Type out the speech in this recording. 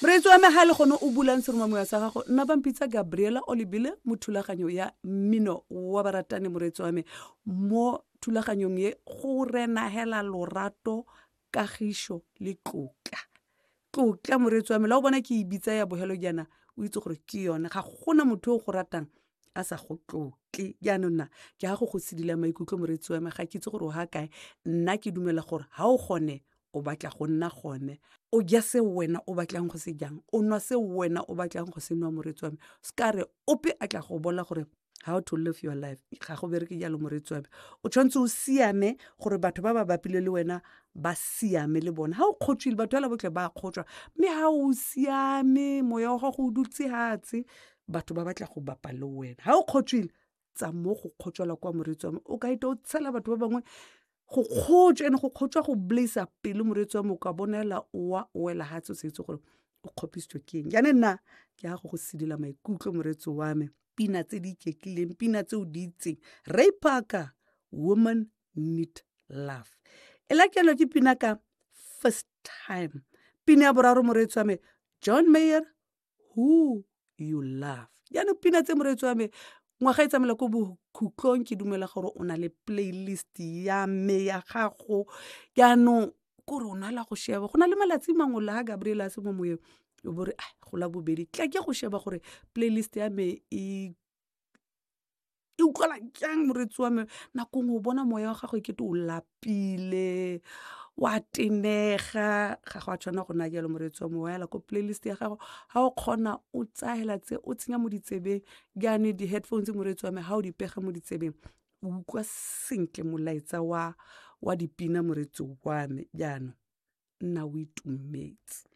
Moreetsi wa me ga le gone o bulang seromamoya sa gago nna ba mpitsa Gabriela Olibile mo thulaganyo ya mmino wa baratani moreetsi wa me mo thulaganyong ye go renagela lorato kagišo le tlotla tlotla moreetsi wa me la o bona ke e bitsa ya bogelo jaana o itse gore ke yone ga gona motho o go ratang a sa go tlotle jaanong na ke ga go go sedila maikutlo moreetsi wa me ga ke itse gore o ga kae nna ke dumela gore ga o gone o batla go nna gone o ja se wena o batlang go se jang o nwa se wena o batlang go se nwa moreetsi wa me se ka re ope a tla go bola gore how to live your life ga go bereke jalo moreetsi wa me o tshwanetse o siame gore batho ba ba bapile le wena ba siame le bone ga o kgotswile batho fela botlhe ba kgotswa mme ga o siame moya wa gago o dutse hatse batho ba batla go bapa le wena ga o kgotswile tsa mo go kgotswela kwa moreetsi wa me o ka ita o tshela batho ba bangwe go kgotswa ene go kgotswa go blaisa pelo moreetsi wa me o ka bonela owa o wela ga tse o sa itse gore o kgopisitswe ke eng jane nna ke ya go go sedila maikutlo moreetsi wa me pina tse di iketlileng pina tse o di itseng ray parker woman need love e lakelwa ke pina ka first time pina ya boraro moreetsi wa me john mayer who you love jaanong pina tse moreetsi wa me ngwaga e tsamela ko bokhutlong ke dumela gore o na le playlist ya me ya gago jaanong kore o nala go sheba go na le malatsi mangwe la gabriel a se mo moyeng o bore a gola bobedi tla ke go sheba gore playlist ya me e e utlwala jang moreetsi wa me nako ngwe o bona moya wa gago e kete o lapile wa tenega ga go a tshwanela go nna jalo moreetsi wa me wa ela ko playlist ya gago ga o kgona o tsaya hela tse o tsenya mo ditsebeng jaanong di-headphones moreetsi wa me ga o di pega mo ditsebeng o utlwa sentle molaetsa wa dipina moreetsi wa me jaanong nna o itumetse.